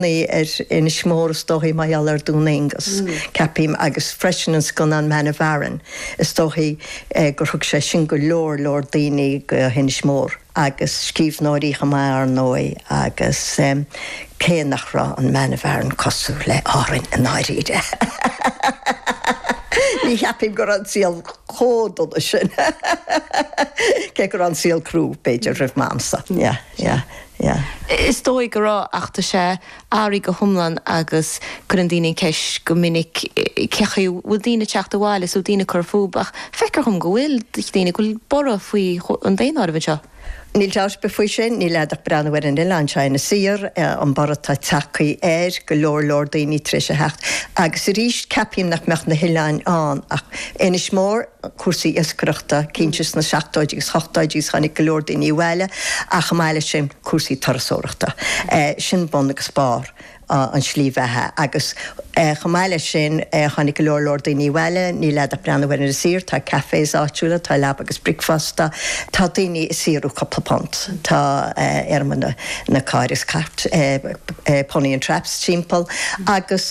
Ní ar Inis Mór is dóichí mar gheall ar Dún Aengus, ceapaim, agus freisin an scannán Man of Aran, is dóichí gur thug sé sin go leor leor daoine go hInis Mór, agus scríbhneoirí chomh maith ar ndóigh, agus cé nach raibh an Man of Aran cosúil le Árainn i ndáiríre, ní cheapaim go raibh an saol chomh dona sin, cé go raibh an saol crua b'fhéidir roimh m'amsa. Yeah. Is dóigh go raibh ach tá sé athraithe go hiomlán agus cuireann daoine an ceist go minic cé acu a bhfuil daoine ag teacht abhaile is bhfuil daoine ag cur fúthu ach feictear dhom go bhfuil daoine go bhfuil borradh faoi an daonáireamh anseo. Níl dabht ar bith faoi sin, níl agat ach breathnú ar an oileán seo Inis Oírr, an borradh atá tagtha air, go leor leor daoine tar éis a theacht agus arís ceapaim nach mbeadh na hoileáin ann ach Inis Mór, cúrsaí iascaireachta cinnte sna seachtóidí agus ochtóidí agus tháinig go leor daoine abhaile ach chomh maith leis sin cúrsaí turasóireachta. Sin bun agus barr an slí bheatha agus chomh maith leis sin tháinig go leor leor daoine abhaile, níl agat ach breathnú ar Inis Oírr, tá cafés áitiúla, tá leaba agus bricfeasta, tá daoine ag saothrú cúpla punt, tá, em, na cairr agus cairt, pony and traps, timpeall agus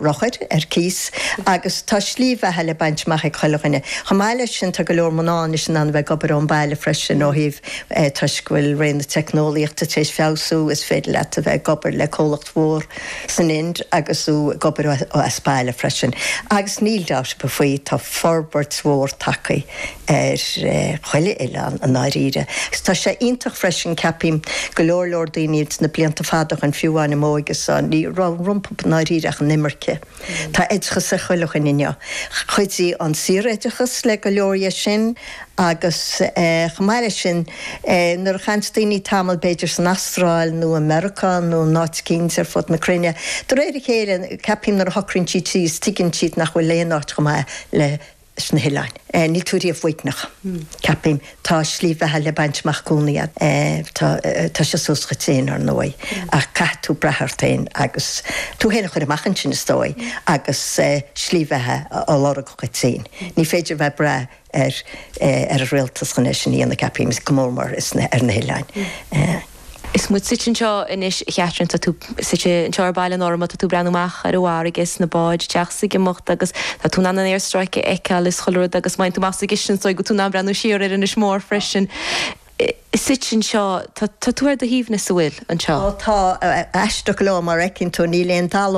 rothair ar cíos. Agus tá slí bheatha le baint amach ag chuile dhuine. Chomh maith leis sin, tá go leor mná anois in ann a bheith ag obair ón baile freisin ó thaobh, eh, toisc go bhfuil ré na teicneolaíochta tar éis feabhsú, is féidir leat a bheith ag obair le comhlacht mhór san Ind agus tú ag obair ó, as baile freisin. Agus níl dabht ar bith faoi, tá forbairt mhór tagtha ar, eh, chuile oileán i ndáiríre. Agus tá sé iontach freisin, ceapaim, go leor leor daoine ins na blianta fada ó shin, fiú amháin i m'óigese, ní raibh rompu i ndáiríre ach an imirce. Tá oideachas ar chuile dhuine inniu. Chuidigh an saor-oideachas le go leor dhe sin agus chomh maith leis sin nuair a chaitheann daoine tamall b'fhéidir san Astráil nó i Meiriceá nó in áit eicínt ar fud na cruinne, de réir a chéile ceapaim nuair a shocraíonn siad síos tuigeann siad nach bhfuil aon áit chomh maith le sna hOileáin. Níl tú riamh uaigneach. Ceapaim. Tá slí bheatha le baint amach i gcónaí agat. Tá tá sé suas dhuit féin, ar ndóigh, ach caithfidh tú brath ort féin agus tú féin a chur amach ansin, is dóigh, agus slí bheatha a lorg dhuit féin. Ní féidir a bheith ag brath ar ar an rialtas chun é sin a dhéanamh, ceapaim, go mór mór ar na hOileáin. Is muid suite anseo anois, a Chatherine. Tá tú suite anseo ar Bhaile an Fhormna, tá tú ag breathnú amach ar an bhfarraige, is na báid ag teacht is ag imeacht agus tá tú in ann an aerstráice a fheiceáil is chuile rud agus má théann tú amach sa gcistin is dóigh go bhfuil tú in ann breathnú siar ar Inis Mór freisin. Suite anseo, tá tú ar do shuaimhneas, an bhfuil? anseo. Tá, aisteach go leor, mar a fheiceann tú níl aon talamh.